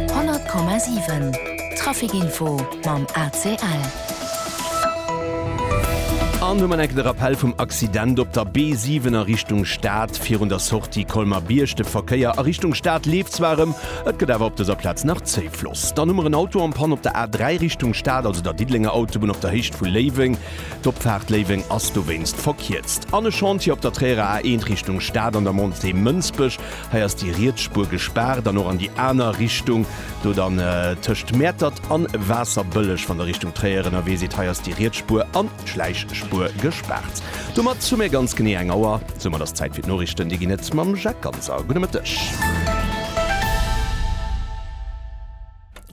100,7 Trafic info mam ACL. An hu mat enke de Rappell vum Accident op der B7 a Richtung Stad virun der Sortie Colmer-Bierg. De Verkéier a Richtung Stad leeft zwar erëm, et gëtt awer op dëser Plaz nach zéi Floss. Dann hu mer en Auto en panne op der A3 Richtung Stad, also der Diddelenger Autobunn op der Héicht vu Léiweng. D'Opfaart Léiweng ass dowéinst verkierzt. An e Chantier op der Tréierer A1 Richtung Stad an der Montée Mënsbech. Hei ass déi riets Spuer gespaart an och an déi aner Richtung do dann tëscht Mäertert an Waasserbëlleg. Wann der Richtung Tréier ënnerwee sidd, hei ass déi riets Spuer an d'Schläichspuer gespaart. Domat hu mir ganz genee eng Auer. Soumat ass Zäit fir d'Noriichten. Déi ginn et mam Jacques Ganser. Gudde Mëtteg.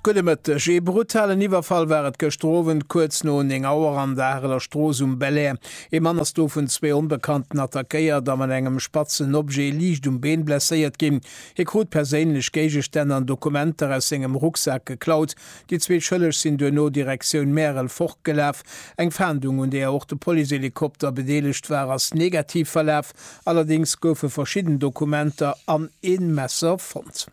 Gudde Mëtteg. Ee brutalen Iwwerfall war et gëschter Owend kuerz no 9 Auer an der Areler Strooss um Belair. Ee Mann ass do vun zwee Onbekannten attackéiert a mat engem spatzen Objet liicht um Been blesséiert ginn. Hie krut perséinlech Géigestänn an Dokumenter aus sengem Rucksak geklaut. Déi zwee Schëlleg sinn duerno Direktioun Märel fortgelaf. Eng Fahndung, un deeër och de Policehelikopter bedeelegt war, ass negativ verlaf. Allerdéngs goufe verschidden Dokumenter an een Messer fonnt.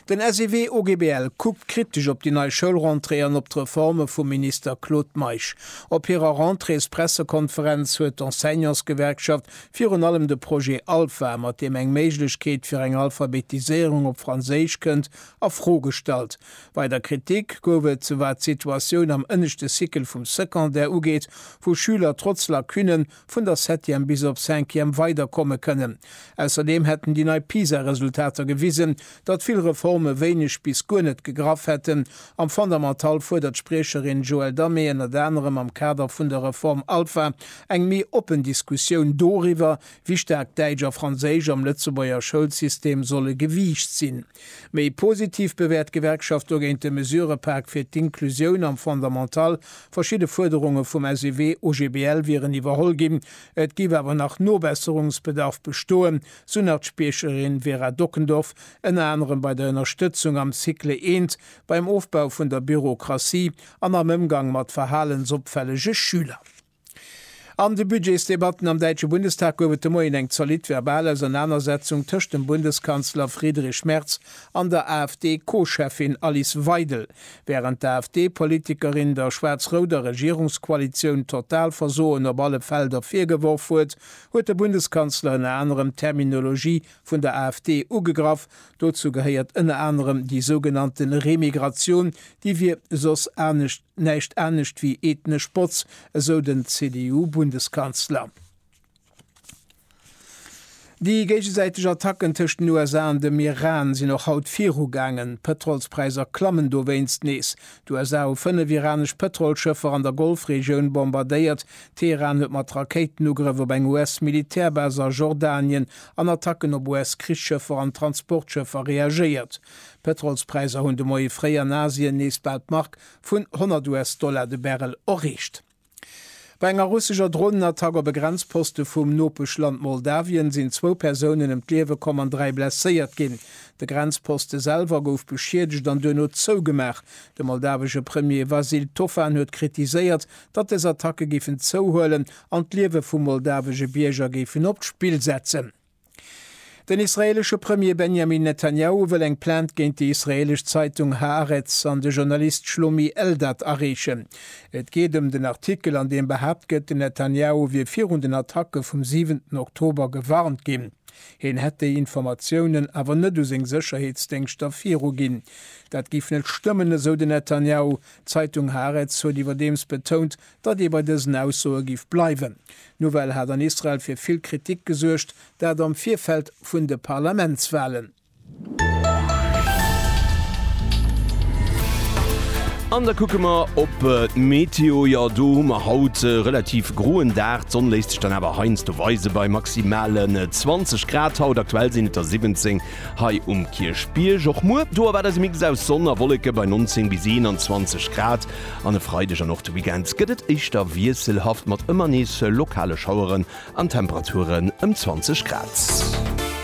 Den SEW OGBL kuckt kritesch op déi nei Schoulrentrée an op d'Reforme vum Minister Claude Meisch. Op hirer Rentréespressekonferenz huet d'Enseignantsgewerkschaft virun allem de Projet Alpha, mat deem eng Méiglechkeet fir eng Alphabetiséierung op Franséisch kënnt, a Fro gestallt. Weider Kritik gouf et, wat d'Situatioun am ënneschte Cycle vum Secondaire ugeet, wou Schüler trotz Lacunnen, vun der Septième bis op Cinquième weiderkomme kënnen. Ausserdeem hätten déi nei PISA-Resultater gewisen, datt vill Reforme wéineg bis guer net gegraff hätten. Am Fondamental fuerdert d'Spriecherin Joëlle Damé ënnert anerem am Kader vun der Reform Alpha eng méi oppen Diskussioun doriwwer, wéi staark Däitsch a Franséisch am Lëtzebuerger Schoulsystem solle gewiicht sinn. Méi positiv bewäert d'Gewerkschaft dogéint de Mesurëpak fir d'Inklusioun am Fondamental. Verschidde Fuerderunge vum SEW, OGBL wieren iwwerholl ginn. Et géif awer nach Nobesserungsbedarf bestoen, sou nach d'Spiecherin Vera Dockendorf, ënner anerem bei der Ënnerstëtzung am Cycle eent, beim Ofbau vun der Bürokratie an am Ëmgang mat verhalensopfällege Schüler. An de Budgetsdebatten am däitsche Bundestag gouf et de Moien eng zolidd verbal Ausernanersetzung tëscht dem Bundeskanzler Friedrich Merz an der AfD-Co-Cheffin Alice Weidel. Wärend d'AfD-Politikerin der schwaarz-rouder Regierungskoalitioun Totalversoen op alle Felder virgeworf huet, huet de Bundeskanzler ënner anerem d'Terminologie vun der AfD ugegraff. Dozou gehéiert ënner anerem déi sougenannte Remigratioun, déi wier soss anescht näischt anescht wéi ethnesch Botz, esou den CDU-Bundeskanzler. Déi géigesäiteg Attacken tëscht den USA an dem Iran sinn och haut virugaangen. D'Pëtrolspräisser klammen dowéinst nees. D'USA hu fënnef iranesch Pëtrolschëffer an der Golfregioun bombardéiert. Teheran huet mat Rakéitenugrëff op eng US-Militärbase a Jordanien an Attacken op US-Krichsschëffer an Transportschëffer reagéiert. D'Pëtrolspräisser hunn de Moie fréi an Asien nees bal d'Mark vun 100 US-Dollar de Barrel erreecht. Bei enger russescher Dronenattack op e Grenzposte vum Nopeschland Moldawien sinn zwou Persounen ëm d'Liewe komm an dräi blesséiert ginn. De Grenzposte selwer gouf beschiedegt an duerno zougemaach. De moldawesche Premier Vasyl Tofan huet kritiséiert, datt des Attacke giffen zouhuelen an d'Liewe vu moldawesche Bierger géifen op d'Spill setzen. Den israeelesche Premier Benjamin Netanjahu wëll eng Plainte géint déi israeelesch Zeitung Haaretz an de Journalist Shlomi Eldad areechen. Et geet ëm den Artikel, an deem behaapt gëtt, den Netanjahu wier virun den Attacke vum siwenten Oktober gewarnt ginn. Hien hätt déi Informatiounen awer net u seng Sécherheetsdéngschter viruginn. Dat géif net stëmmen, esou den Netanjahu. D'Zeitung Haaretz huet iwwerdeems betount, datt ee bei dësen Aussoe giff bleiwen. D'Nouvelle hat an Israel fir vill Kritik gesuergt, dat am Virfeld vun de Parlamentswalen. An da kucke mer op d'Meteo. Jo, do hu mer haut e relativ groen Dag. D'Sonn léisst sech dann awer heiansdo weisen, bei maximalen 20 Grad haut. Aktuell sinn et der 17 hei um Kierchbierg. Och muer, do erwaart eis e Mix aus Sonn a Wolleke bei 19 bis 21 Grad. An e Freideg an och de Weekend gëtt et éischter wiesselhaft mat ëmmer nees lokale Schaueren an Temperaturen ëm 20 Grad.